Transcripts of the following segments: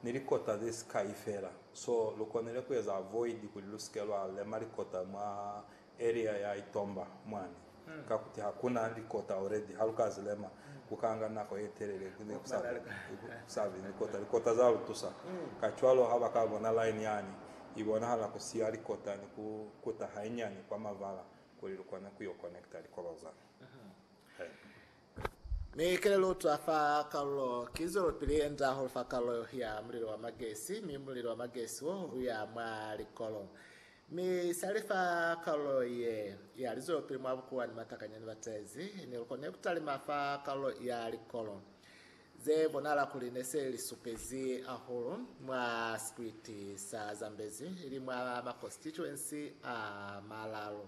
ni likota ze si kai fela. So lu konile ku eza avoid kuli lu si ke lwa lema likota mwa area ya Itomba mwani. Ka kuti ha ku na likota already, ha lu ka zi lema, ku ka nga nako ye telele ku be ku sa be ni likota. Likota za lu tusa. Kacwalo ha ba ka bona line yani, i bonahala ku siya likota ni ku kuta hainyani kwa mavala kuli lu kone ku yo connecta likoba za. Mi kelelo twa fa kalulo ki zwelopili enda hahulu fa kalulo ya mulilo wa magesi, mi mulilo wa magesi wo uya mwa likolo. Mi sali fa kalulo ye ya lizwelopili mwa bukuwa ni matakanya ni batezi, ne lu kone kutalima fa kalulo ya likolo, ze bonahala kuli ne se li supezi hahulu mwa sikwiti sa Zambezi, ili mwa makositituensi a malalu.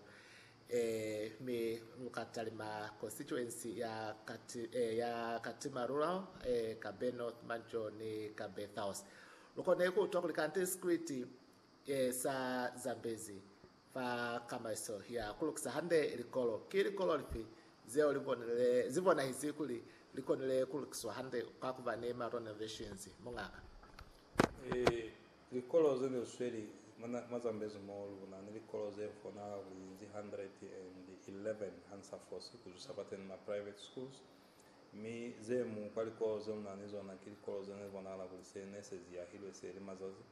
Ee, mi lu ka talima konsituensi ya Katimer Rural, ee, ka be North Manjor ni ka be South. Lu kone ku utwa kuli kante sikriti ye sa zambezi fa kamaiso ya ku lukisa hande likolo. Ki likolo lifi zeo li bonile, zi bonahisi kuli li konile ku lukiswa hande ka ku ba ni ma renovations, Muñaka? Ee, Likolo ze ne sweli mazambezo mo lu na ni likolo ze fonahala kuli linzi 111 ha nsa fosi ku zwisa fateni ma private schools, mi ze mu kwa likolo ze lu na ni zona ki likolo ze ne bonahala kuli se ne se ziyahilwe seli mazazi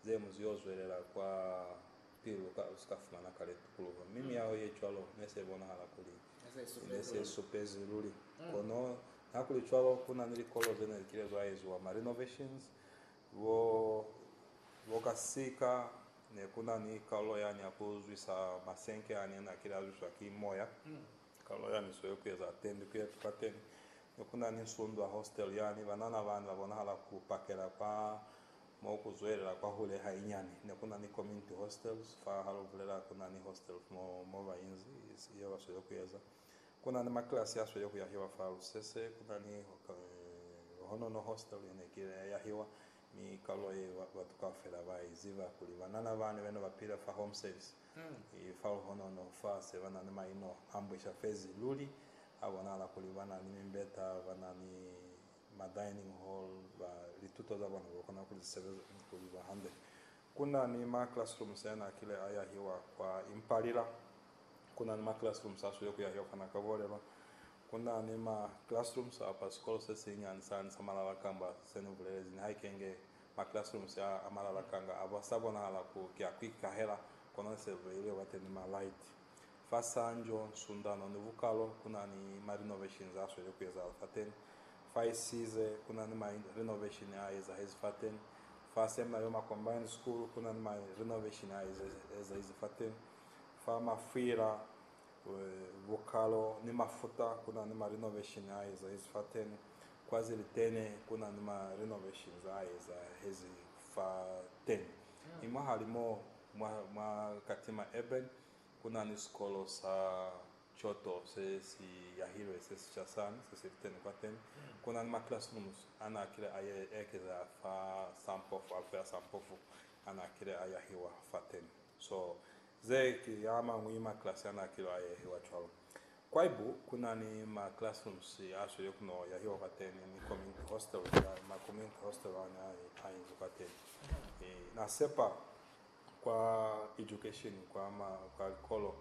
ze mu ziyo zwelela kwa pili lu ka lu si ka fumana kale tukuluho. Mi miyaho ye cwalo ne se bonahala kuli i ne se supezi luli. Kono, niha kuli cwalo, ku na ni likolo ze ne li kile zwa eziwa ma renovations Bo, bo ka sika ne ku na ni kalulo yani ya ku zwisa masenke a ne na kile a zwiswa ki Moya, kalulo yani so ye ku eza tendi ku yetu kateni. Ne ku na ni nsundu a hostel yani, banana bani ba bonahala ku pakela kwa mo ku zwelela kwahule hainyani. Ne ku na ni community hostels fa, ha lu bulela ku na ni hostels mo, mo ba inzi, ye ba so ye ku eza. Ku na ni makilasi a sweli ku yahiwa fa lusese, ku na ni honono hostel ye ne kile ya yahiwa, mi kalulo ye batu kaufela ba i ziba kuli banana bani be ne ba pila fa home service i fa luhonono. Fa se ba na ni maino a mbwisha fezi luli, a bonahala kuli ba na ni mimbeta, ba na ni ma dining hall, ba lituto za bona ba kona ku li sebeza ni ku li ba hande. Ku na ni ma classrooms ya n'a kile a yahiwa kwa Impalila. Ku na ni ma classrooms a swile ku yahiwa fa n'a ka bolelwa. Ku na ni ma classrooms a fa sikolo se sinyani sani sa malala kamba se ni bulelezi, nihaikenge ma classrooms a, a malala kanga a, ba sa bonahala ku ki a ku ikahela, kono ne se beilwe bateni ma light. Fa Sanjo, Sundano ni Vukalo ku na ni ma renovations a sweli ku ezahala fateni. Fa Isize, ku na ni ma renovation a ezahezi fateni. Fa Seminary Yoma Combined School, ku na ni ma renovation a ezahezi fateni. Fa Mafwila, Vukalo ni Mafuta ku na ni ma renovation a ezahezi fateni. Kwa Zilitene, ku na ni ma renovations a ezahezi fateni. Mi mwahalimo mwa, mwa Katima Urban, Ku na ni sikolo sa Kyoto se si yahilwe se sica sani se si li teni kwateni. Ku na ni ma classrooms a n'a kile a ekeza fa sa mpofu, alufo ya sa mpofu a n'a kile a yahiwa fateni. So, ze ki a mañwi ma class a n'a kile a yahiwa cwalo. Kwaibu ku na ni ma classrooms a sweli ku no yahiwa kwateni ni community hostel, ma community hostel a n'a inzi kwateni. Na sepa Kwa education, kwa ma, kwa likolo,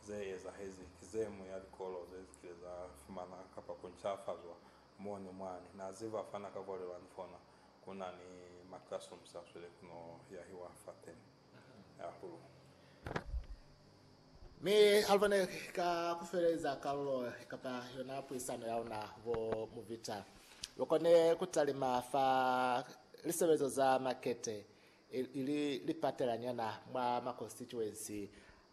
ze ezahezi ki ze mu ya likolo ze zikile za fumana kapa ku ncafazwa mo ni mwani. Na ze ba fana ka kwalelwani fona, ku na ni ma classrooms a swile ku no yahiwa fateni hahulu. Mi Alva ne ka ku feleza kalulo kapa yona puisano ya luna bo Muvita, lu kone ku talima fa lisebezo za makete ili lipatelanyana mwa makonstituensi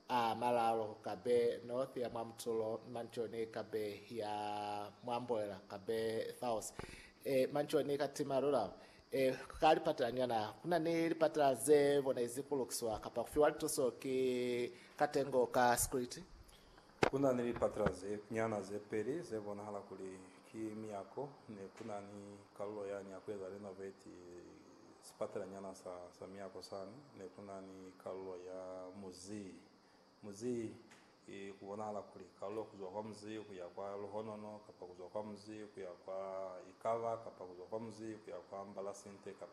a malalo kabe North ya mwa Mtulo, Manchoni kabe ya mwa Mboela kabe South. E, Manchoni ka tima rural. E, ka lipatelanyana kuna ni lipatela ze bonezi ku lukiswa kapa ku fiwa lituso ki katengo ka security. Kuna ni lipatela ze nyana ze peli ze bonahala kuli ki miyako, ne kuna ni kalulo yani ya ku eza renovate sipatelanyana sa, sa miako sani, ne ku na ni kalulo ya muzii. Muzii, i, ku bonahala kuli, kalulo ku zwa kwa muzii ku ya kwa luhonono, kapa ku zwa kwa muzii ku ya kwa ikaba, kapa ku zwa kwa muzii ku ya kwa mbalasinte, kapa.